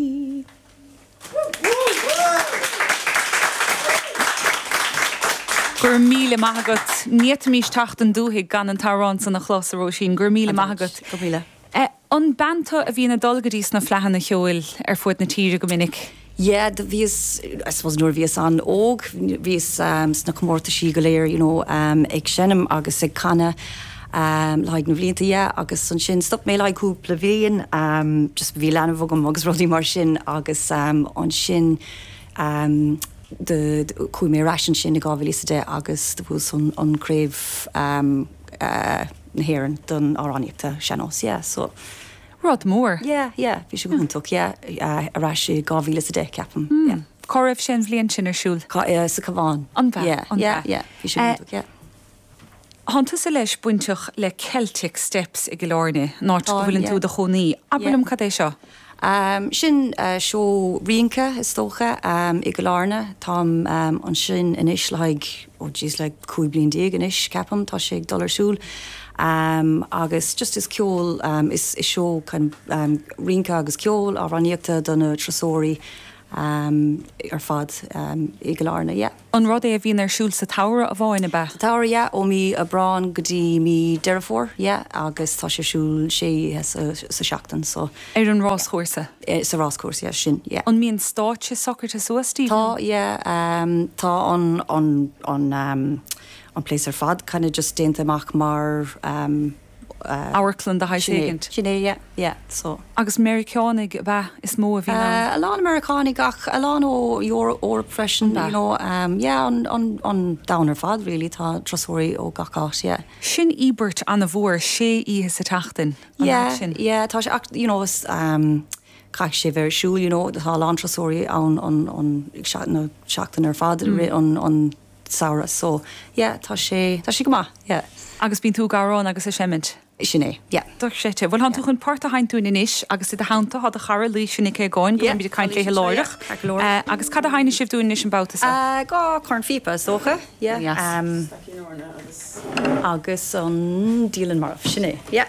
Go raibh míle maith agat. Ní fhéadfaimís teacht 'on dúthaigh gan an t-amhrán san a chlos, a Róisín. Go raibh míle maith agat. Go raibh míle. An bean tú a bhíonn ag dul go dtís na fleadhanna cheoil ar fuaid na tíre go minic? Yeah, do bhíos, I suppose nuair a bhíos an-óg, bhíos sna comórtaisí go léir, you know, ag seinm agus ag canadh. le haghaidh na bhlianta yeah agus ansin stop mé le haghaidh cúpla bhliain just bhí leanbh agam agus rudaí mar sin agus ansin chuaigh mé ar ais ansin i 2010 agus do bhuas an craobh na hÉireann don amhránaíocht sean-nós yeah so rud mór yeah yeah bhí sé go hiontach yeah ar ais i 2010 ceapaim yeah. Cá raibh sé an bhliain sin ar siúl? Sa Cabhán. Ab ea? Yeah yeah yeah bhí sé go hiontach yeah. Thánn tusa leis bainteach le Celtic Steps i gCill Áirne, an áit go bhfuileann tú i do chónaí. Abair liom cad é seo? Sin seó rince is dócha i gCill Áirne. Táim ansin anois le haghaidh, ó geez, le cúig bliain déag anois ceapaim tá sé ag dul ar siúl. Agus just is ceol, is seó kind of rince agus ceol, amhránaíocht do na turasóirí ar fad i gCill Áirne, yeah. An rud é a bhíonn ar siúl sa tsamhradh amháin, ab ea? Sa tsamhradh, yeah. Ó mí Aibreán go dtí mí Deireadh Fómhair, yeah. Agus tá sé ar siúl sé oíche sa tseachtain, so. Ar an ráschúrsa? Sa ráschúrsa, yeah. Sin, yeah. An mbíonn stáitse socraithe suas díbh? Tá, yeah. Tá an place ar fad kind of just déanta amach mar. amharclann de shaghas éigint. Sin é, yeah, yeah, so. Agus Meiriceánaigh is ea is mó a bhí ann? A lán Meiriceánaigh ach a lán ó Eoraip freisin, you know, yeah, an domhan ar fad really, tá turasóirí ó gach áit, yeah. Sin íobairt ana-mhór, sé oíche sa tseachtain, an áit sin. Yeah, yeah, tá sé ach, you know, caithfidh sé bheith ar siúl, you know, tá a lán turasóirí ann an seachtain ar fad, an. samhradh so yeah tá sé tá sé go maith yeah. Agus bíonn tú ag amhrán agus ag seimint. Sin é yeah. Doic sete. Bhuel thánn tú chun port a sheinnt dúinn anois agus i do theannta thá do chara Laoidh sin aici againn go mbeimid ag caint léithe láithreach. Agus cad a sheinnfidh sibh dúinn anois an babhta so? Dhá chornphíopa is dócha yeah. Staicín eorna agus. Agus an Liathlann Marbh. Sin é yeah.